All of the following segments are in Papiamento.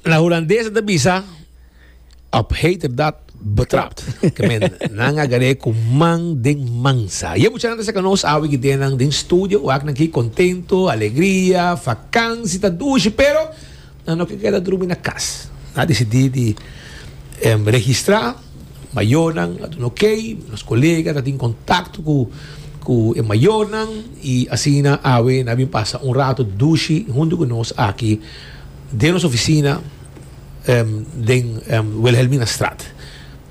Na Hulandes ta bisa, Op heterdaad betrapt. Ke men, nan a garé ku man den mansa. Ye muchanan ta saka nos awe kidé nan den studio, wak nan ki kontento, alegria, vakansi ta dushi, pero nan no ke keda drumi na kas. Nan a disidí di registrá. Mayornan a duna ok, nos colega ta tin contacto cu cu e mayornan y asina awe nan a bin pasa un rato dushi hunto cu nos aki den nos oficina den Wilhelminastraat.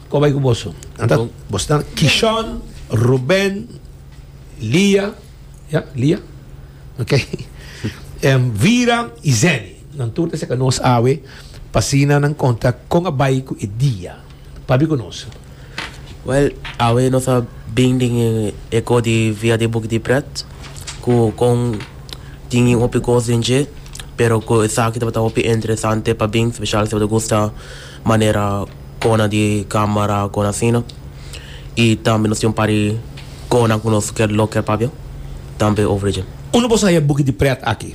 Con bay cu boso? Nan ta, boso ta Kishon, Ruben, Lia, ya, Lia, ok, Vira y Zenny. Nan tur ta seka nos awe pa asina nan konta kon a bai ku e dia. Pabi ku nos? Wèl, awe nos a bin den e eko di via di Buki di Prèt, ku kon tin bin hopi kos den dje, pero ku esaki tabata hopi interesante pa bin, speshal si bo ta gusta manera kona di kámara, kona asina. I tambe nos tin un par di konan ku nos lo kier pabia tambe over dje. Unda bo sa haya Buki di Prèt aki?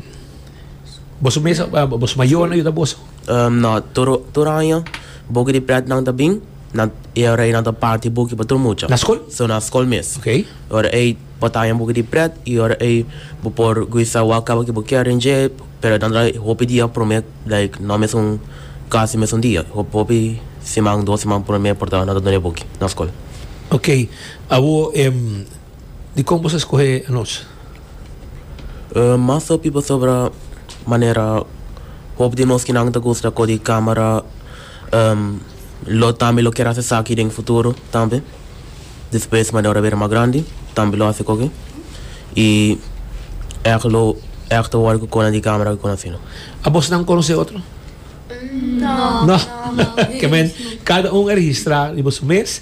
Boso mes, boso mayornan yuda boso? Um, no, tur, tur aña, buki di pretnan ta bin, nan, e ora ei nan ta parti buki pa tur mucha. Na skol? So, na skol mes. Ok. E ora ei bo ta haña buki di pret, i ora ei bo por guisa wak kaba ke bo kier den dje, pero nan ta hopi dia prome, like, no mesun, kasi mesun dia, hop, hopi siman, dos siman prome por ta, nan ta done buki na skol. Ok, awor, em, Dikon boso a skohe anochi? Mas hopi pasobra manera hopi di nos kinan ta gusta ko di camera lo tambe lo kier haci esaki den futuro tambe despues manera ora bira mas grandi tambe lo haci koke y eck lo eck ta worry ku konan di camera kikun asina. A bosnan conoce otro? No. Kiemen cada un a registra riba su mes.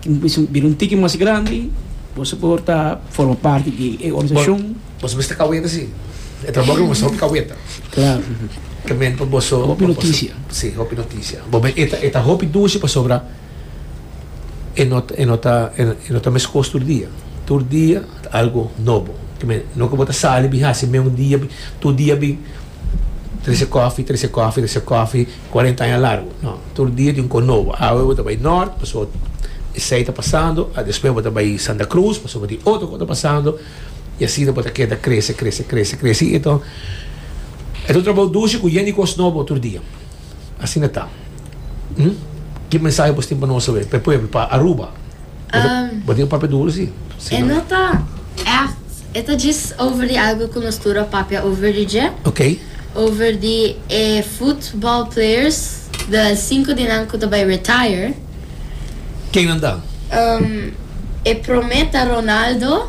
Tin ku bira un tiki mas grandi, bo su por ta forma parti di e organisashon. Boso mester kaweta si e trabou ku boso hopi kaweta. Klaru. Kemente pa boso. Hopi notisia. Si, hopi notisia. Bo me e ta hopi dushi pasobra e no e no ta e no ta meskos tur dia. Tur dia ta algu nobo. Kemente no ku bo ta sali bin hasi meun dia bin tur dia bin trese kofi, trese kofi, trese kofi. Cuarenta aña largo, no. Tur dia tin con nobo. Awe bo ta bay Nort, paso esey ta pasando. A despues bo ta bay Santa Cruz, paso bo tin otro cu ta pasando. Y asina bo ta keda crece, crece, crece, crece. Y enton e ta un trabao dushi cu yen di cos nobo tur dia. Asina ta. Hm? Ki mensahe bos tin pa nos awe, pa e pueblo, pa Aruba? Bo tin papia duru si. E no ta ègt, e ta djis over di algu ku nos tur a papia over di dje. Okay. Over di e futbòl players, de sinku di nan ku ta bai retire. Kennan ta? E promé ta Ronaldo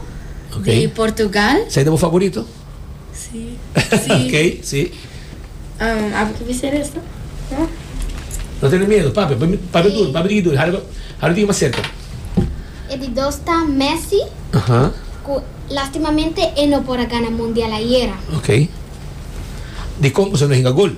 di Portugal. Sa e ta bo favorito? Sí, sí. Ok, sí. Um, abo ta bisa eres, no? No? No tene miedo, papi. Papi, papi duro, papi di duro. Haro, haro di mas cerca. E di dos ta Messi. Aha. Cu lastimamente e no por a gana Mundial ayera. Ok. Di con cu so no hinga gol?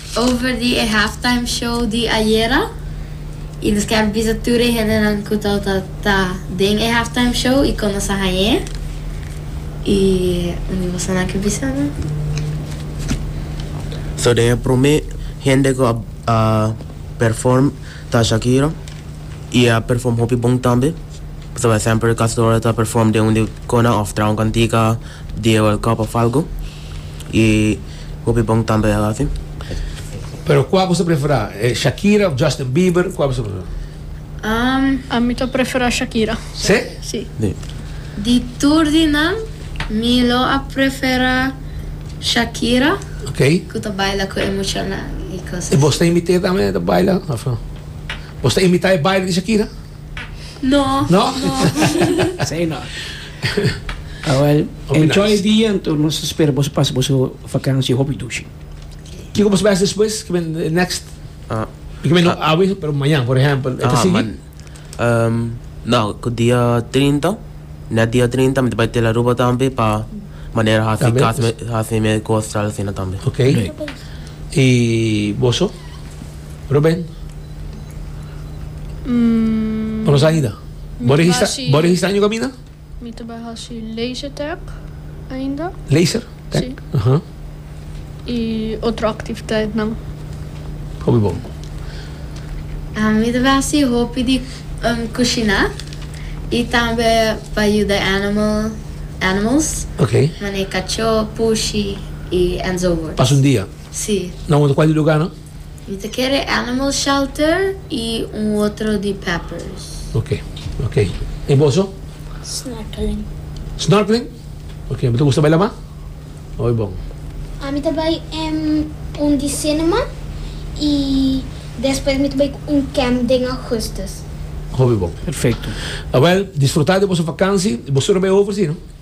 Over di e halftime show di ayera y nos ker bisa tur e hendenan cu ta ta ta den e halftime show y con nos a hañ'e y un di bosonan ke bisa nan. So den e prome hende cu a perform ta Shakira y e a perform hopi bon tambe. Pasobra semper casi tur ora ta perform den un di cona of traha un cantica di e World Cup of algo y. Hopi bon tambe a hasi. Pero kua bo ta prefera? Shakira of Justin Bieber? Kua bo ta prefera? Um. A mi ta prefera Shakira. Sí? Sí. Di. Di tur di nan, mi lo a prefera Shakira. Ok. Cu ta baila cu e muchanan y cosas. Y vos ta invité tambe ta baila? Of no? Vos ta invita e baile di Shakira? No? Say no. Ah well, enjoy e dia anto nos ta spera boso pasa boso vakansia hopi dushi. Kiko boso bes despues? Kiben e next? Ah, I kiben no awe, pero mañan, por ehempel, e ta ah, man, sigui? em, no, ku dia 30, net dia 30 mi ta bai tel Aruba tambe pa manera hasi Tambe, kas me, pues. hasi me ku Australia asina tambe. Ok. I boso? Ruben? Mm, Bo no sa ainda? Mi Bo ta registra, hasi- bo registra año kaminda? mi ta bai hasi laser tag ainda. Laser? Tag? Sí. Aha. I otro activiteitnan. Hopi bon. Ah, mi ta bai hasi hopi di cushina y tambe pa yuda animal, animals, Ok. manera cacho, pushi y enzovoorts. Pasa un dia. Sí. Nan bo ta cual e lugar nan? Mi ta kere animal shelter y un otro di peppers. Ok ok y boso? Snorkeling. Snorkeling? Ok bo ta gusta bai la mar? Oy bon. Ami ta bai en un di cinema y despues mi ta bai cu un camp den augustus. Hopi bon. Perfecto. Awel disfruta di boso vakansi y bo sura bai over si no.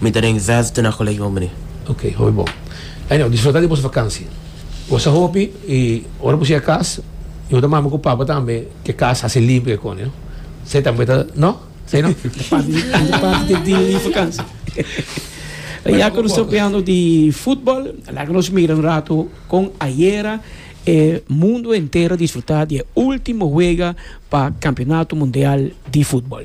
Mi ta den zesde na colegio hombre. Ok, hopi bon. Anyhow, disfruta di boso vakansia. Gosa hopi i ora bo shiga cas, yo ta mama cu papa tambe cu e cas haci limpi e cone. Esey tambe ta, no? Esey no? Ta parti di e vakansia. Ya cu nos ta opiando di futbol, laga nos mira un rato con ayera e mundo enter a disfruta di e ultimo wega pa Campeonato Mundial di Futbol.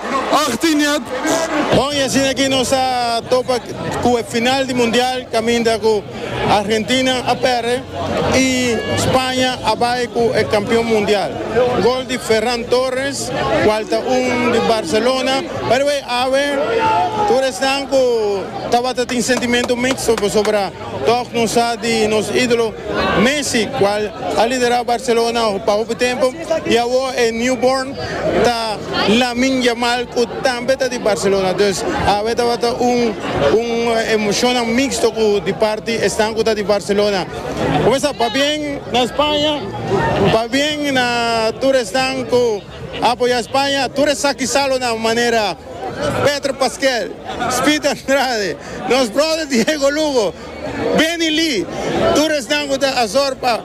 Achtiniat. Bon, y asina ki nos a topa cu e final di Mundial caminda cu Argentina a perde y Spaña a bay cu e campeon mundial. Gol di Ferran Torres, cual ta un di Barcelona. By the way, awe tur esnan cu tabata tin sentimento mixto pasobra. Tòg nos sa di nos ídolo Messi, kual a liderá Barcelona pa hopi tempu i awor e newborn ta Lamine Yamal ku tambe ta di Barcelona. Dus awe tabata un un emoshonnan miksto ku di parti esnan ku ta di Barcelona. Kumesa pa bien na Spaña, pa bien na tur esnan ku. Apoya Spaña, tur esaki salonan manera Petr Pasquel, Speed Andrade, nos brother Diego Lugo, Benny Lee, tur esnan cu ta Azor pa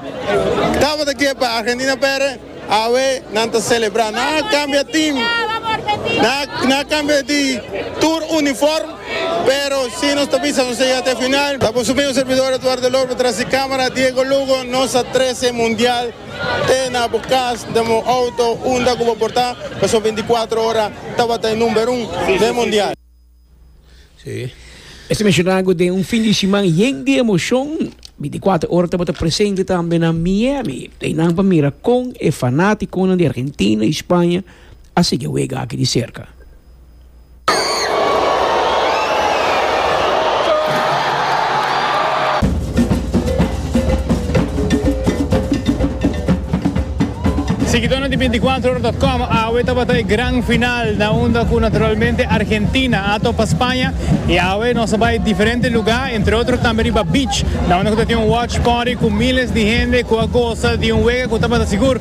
tabata ke pa Argentina pere, awe nan ta celebra. Nan a cambia team, nan a cambia di tur uniform, pero si nos ta bisa nos ta yega te final. Ta con su mismo servidor Eduardo Lorbo tras di camera, Diego Lugo, nos a trece mundial. te na bo kas, den bo outo, unda ku bo por ta, pasobra binticuatro ora tabata e number un den mundial. Esei menshoná ku den un fin di siman yen di emoshon, binticuatro ora tabata presente tambe na Miami, einan pa mira kon e fanátikonan di Argentina i Spaña a sigui e wega aki di serka. Siguidónan di Binticuatrohora dòt com, Awe tabata e gran final na unda cu naturalmente Argentina a topa Spaña y awe nos a bay diferente lugá entre otro tambe riba beach na unda cu ta tin un watch party cu miles di hende cu a goza di un wega cu tabata sigur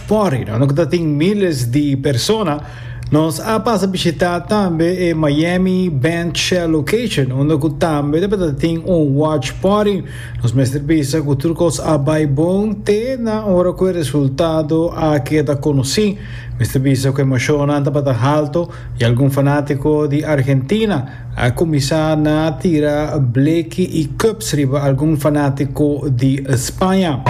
Fori nan loke ta tin miles di persona, nos a pasa bishitá tambe e Miami Band Shell Location unda ku tambe tabata tin un watch party. Nos mester bisa ku tur kos a bai bon te na ora ku e resultado a keda konosí. Mester bisa ku e emoshonnan tabata halto i algun fanátiko di Argentina A cuminsa na tira bleki y cups riba algun fanatico di Spaña.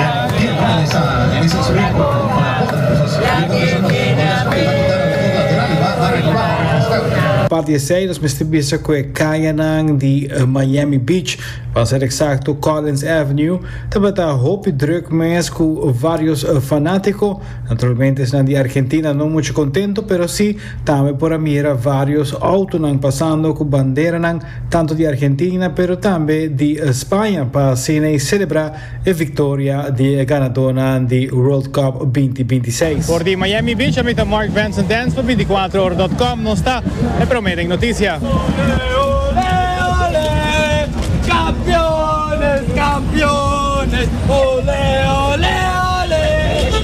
Aparte esey nos mester bisa cu e cayanan di Miami Beach, pa ser exacto Collins Avenue, tabata hopi druk mes cu varios fanatico. Naturalmente esnan di Argentina no mucho contento pero si Tambe por a mira varios autonan pasando cu banderanan tanto di Argentina pero tambe di Spaña pa asina celebra e victoria di e ganadornan di World Cup binti binti seis. For di Miami Beach, ami ta Mark Vanson Dance pa binticuatro ora dot com. Nos ta e prome den noticia. Ole, ole, ole, Campeones, campeones, ole, ole, ole.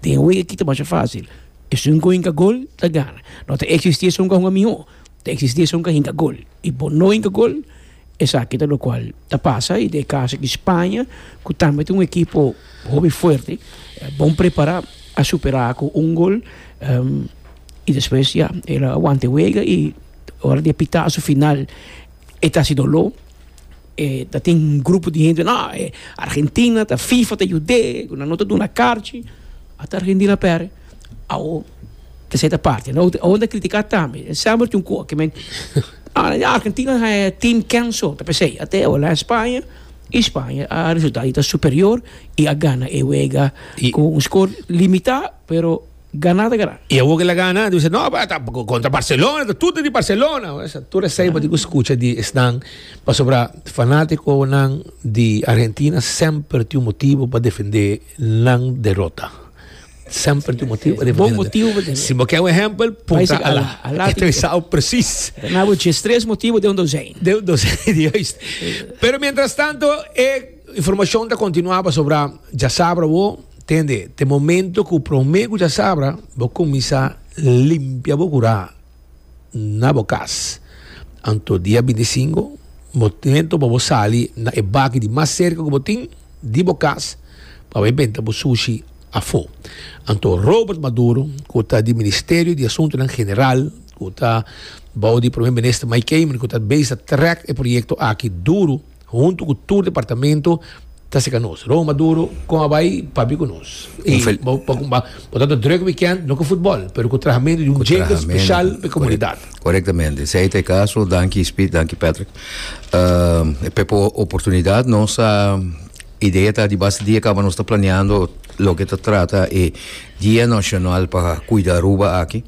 Tin un ekip ta masha fásil. Esun ku hinka gol ta gana. No ta eksistí esun ku a hunga mihó. Ta eksistí esun ku a hinka gol. I bo no hinka gol, esaki ta lokual ta pasa. I den e kaso di Spaña, ku tambe ta un ekipo hopi fuerte, bon prepará, a superá ku un gol. I despues, ya, el a wanta e wega i ora di e pitasu final. E ta hasi doló, e ta tin grupo di hende, no, e Argentina ta fifa ta yud'é, ku nan no ta duna karchi, ata Argentina a pèrdè, awo ta seta parti. Awo awo nan ta kritiká tambe. Den sèmbr tin un koha ke men, ah, ya Argentina a haya tim kenso, ta p'esei. Ate awo la Spaña, i Spaña a resultá di ta superior i a gana e wega ku un skor limitá, pero. Gana ta gana. I awor ke la gana ta bisa no pa ta kontra Barcelona ta tur ta di Barcelona esa tur esei bo tin ku skucha di esnan pasobra fanatikonan di Argentina semper tin un motibu pa defendé nan derota semper tin un motibu pa defendé nan derota bon motibu bo tene si bo ke un ehempel puntra Alá Alá tin ku sa presis na bo djes tres motibu den un dosèn den un dosèn juist pero mientras tanto e. Informacion ta continua pasobra djasabra bo tende te momento cu prome cu djasabra bo cuminsa limpia bo cura na bo cas. Anto dia binti i singu momento pa bo sali na e baki di mas cerca cu bo tin di bo cas pa bai benta bo sushi afo. Anto Robert Maduro cu ta di Ministerio di Asuntonan General cu ta bou di Prome Minister Mike Kamen cu ta base ta track e proyecto aki duru, Huntu cu tur departamento ta seca nos. Ron Maduro, con a bay pabi cu nos? Y bo ta ta druk weekend, no cu futbol, pero cu trahamentu di un jingle special pa e comunidad. Corectamente. Si ey ta e caso, danki Speed, danki Patrick. Uh, pe po oportunidad, nos a idea ta di basta dia caba nos ta planeando loke ta trata e Dia Nacional pa Cuida Aruba aki.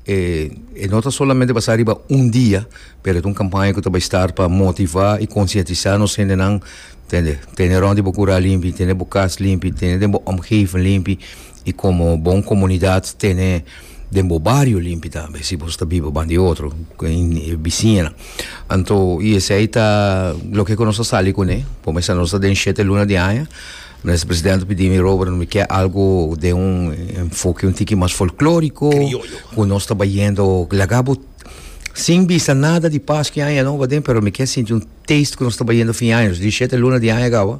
E no ta solamente basa riba un dia, pero e ta un campaña cu ta bay start pa motiva y concientisa nos hendenan, tende, tene rond di bo cural limpi, tene bo cas limpi, tene den bo omgeving limpi y como bon comunidad tene den bo bario limpi tambe, si boso ta biba banda e otro, bisiñanan. Anto y esey ta loke cu nos a sali cune, por mester nos ta den shete luna di aña. Minister presidente pidi mi Robert no mi ke algo den un enfoke un tiki mas folkloriko Criollo. ku nos ta bayendo laga bo sin bisa nada di pas ki aña no baden pero mi ke sinti un taste ku nos ta bayendo fin aña nos di shete luna di aña gaba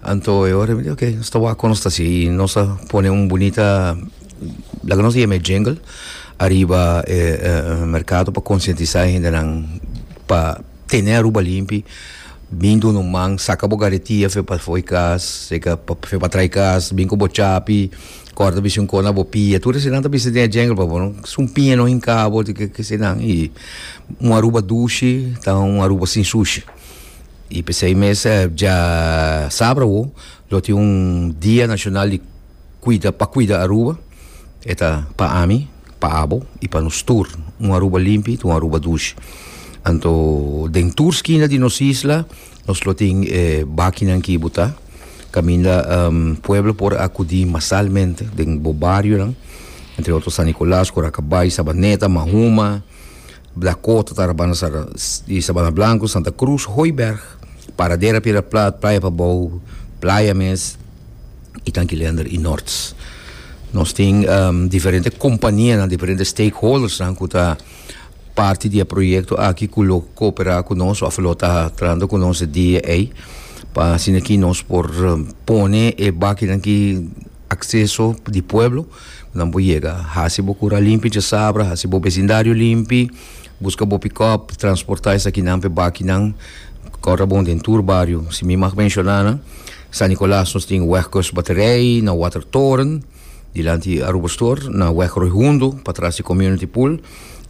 anto e ora mi di okay nos ta wak kon nos ta si i nos ta pone un bunita laga nos yeme jingle ariba e e merkado pa konsientisa e hendenan pa Tene Aruba limpi, bin duna un man, saka bo garetia fe pa fo'i kas, fe pa trai kas, bin ku bo chapi, kòrda bisha un kona bo pia, tur esenan ta bisa den e djèngel pa bo no, sun piña no hinka bo di ke ke esenan i un Aruba dushi ta un Aruba sin sushi i p'esei mes dja sabra awo lo tin un dia nashonal di. Cuida, pa cuida Aruba e ta pa ami, pa abo y pa nos tur. Un Aruba limpi ta un Aruba dushi. Anto den tur skina di nos isla nos lo tin e bakinan ki bo ta, caminda pueblo por acudi masalmente den bo barionan, entre otro San Nicolas, Curacabay, Sabaneta, Mahuma, Blakota ta Rabana Sara di Sabana Blanku, Santa Krus, Hooiberg, Paradera, Piedra Plat, Playa Pabou, Playa mes i tanki Leander i Norts. Nos tin diferente kompanianan, diferente stakeholdersnan ku ta parti di e proyekto aki ku lo koopera ku nos òf lo ta trahando ku nos e dia ei pa asina ki nos por pone e bakinan ki akseso di pueblo. Nan por yega. Hasi bo kura limpi dje sabra, hasi bo besindario limpi, buska bo pikòp, transportá esakinan p'e bakinan, kòrda bon den tur bario. Si mi mag menshoná nan, San Nicolas nos tin Wegkust Batterij, na Watertoren, dilanti Aruba Store, na Weg Roy Hundo, patras di Community Pool,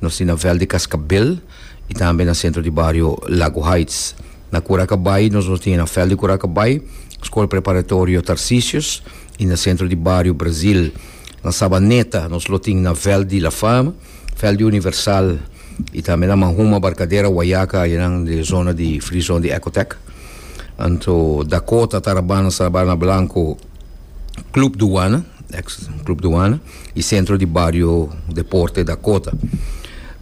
nos tin na Veld di Cascabel i tambe na sentro di bario Lago Heights. Na Curaca Bay nos nos tin na Veld di Curaca Bay, Skol Preparatorio Tarcisius, y na centro di bario Brasil. Na Sabaneta nos lo tin na Veld di la Fama, Veld di Universal y tambe na Manhuma, Barcadera, Wayaca ayenan den zona di Free Zone di Ecotec. Anto Dakota ta Rabana, Sabana Blanco, Club Douana, ex Club Douana, y centro di bario Deporte Dakota.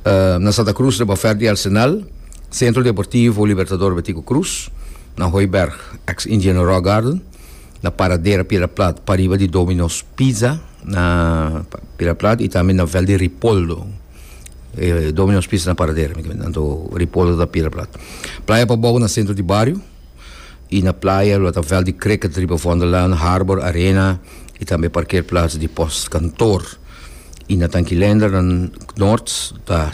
Uh, na Santa Cruz riba Verd di Arsenal, Centro Deportivo Libertador Betico Cruz, na Hooiberg, ex Indian Rock Garden. na Paradera Piedra-Plat pariba di Domino's Pizza na Piedra-Plat y tambe na Velde Ripoldo eh, Domino's Pizza na Paradera anto Ripoldo ta Piedra-Plat playa pa bogo na centro di bario y na playa lo ta Velde Cricket riba Vondellaan Harbor Arena y tambe parkeerplaats di post kantoor y na Tankilender na Noord ta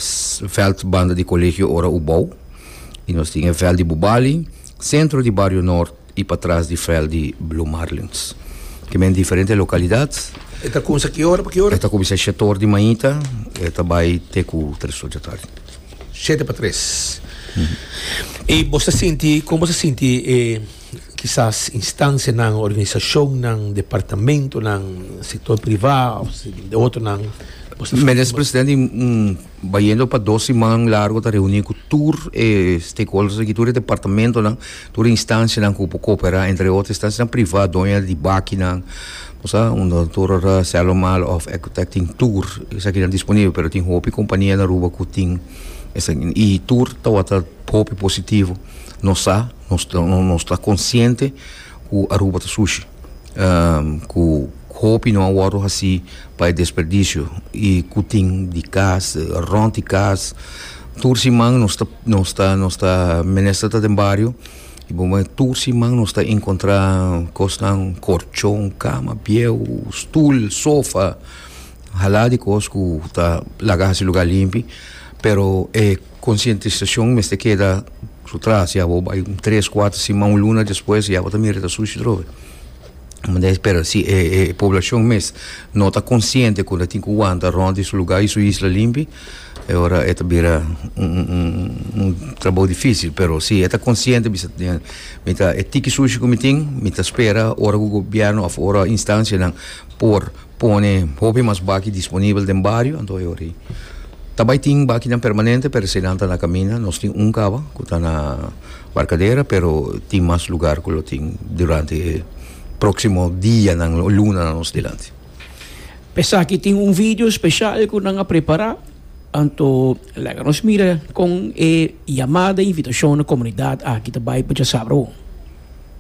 veld banda di Colegio Ora Ubou y nos tin e veld di Bubali centro di bario Noord y pa tras di veld di Blue Marlins. Kimen diferente localidad. E ta kumsa ki ora pa ki ora? E ta kuminsa shete or di mainta e ta bai te ku tres or di atardi. Shete pa tres. E bos ta sinti, kon bos ta sinti e kisas instancianan, organisacionnan, departamentonan, sector priva of de otronan. Menes presidente Bayendo pa dos siman largo ta reuni cu tur e stakeholders aki, tur e departamentonan, tur e instancianan cu por coopera, entre otro instancianan priva, doña di bakinan, bo sa, unda tur ora Sellomal of Ecotekting tur esaki nan disponibel, pero tin hopi compania na Aruba cu tin esaki, y tur tawata hopi positivo, nos sa, nos ta consciente. Ku Aruba ta sushi ku hopi no a wòrdu hasi pa e desperdisio i ku tin di kas rònt di kas tur siman nos ta nos ta nos ta mester ta den bario i bo me tur siman nos ta enkontrá kosnan korchon kama bieu stul sofa hala di kos ku ta laga hasi lugar limpi pero e Konsientisashon mester keda su tras, ya bo bai un tres, kuater siman, un luna despues ya bo ta mira ta sushi atrobe. Pero si e e poblashon mes no ta konsiente ku ta tin ku wanta rònt di su lugá i su isla limpi e ora e ta bira un un un un trabou difísil. Pero si e ta konsiente bisa den mi ta e tiki sushi ku mi tin, mi ta spera ora ku gobièrnu òf ora instanshanan por. Pone hopi mas baki disponibel den bario, anto e ora ta bai tin bakinan permanente, pero esei nan ta na kaminda. Nos tin un kaba ku ta na Barkadera, pero tin mas lugar ku lo tin durante e próksimo dianan o lunanan nos dilanti. Esaki tin un video speshal ku nan a prepará, anto laga nos mira kon e yamada, invitashon na komunidat aki ta bai pa djasabra awor.